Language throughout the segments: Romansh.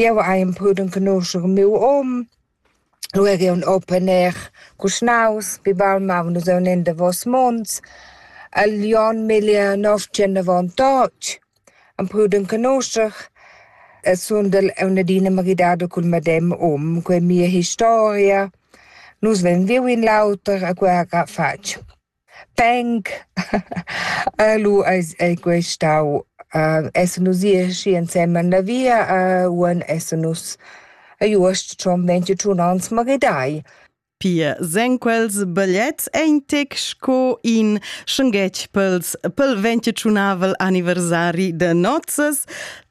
Jeu hai emprü d'enconuscher miu um. Lu er jeu ün open air cuschnaus. Pi baul maun nus aunc en davos munts. El Jon miglia nov tschernavontatg. Emprü d'enconuscher. E sundel aunc adina maridado cul medem um. Quei è mia historia. Nus vein viu in l'auter e quei ha fatg. Peng. lu eis ei quei stau essan nus ì aschi ensemen la via uonn essan nus iuost schon ventg u tschun ans maridai. Pia sen quels bagliets ein tec sco in schenghetg pels pel ventg e tschunavel anniversari da nozzas.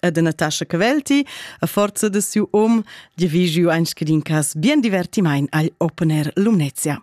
ed Natascha Cavelti a forza de siu om divigiu ein scadin cas bien divertimain agl Open Air Lumnezia.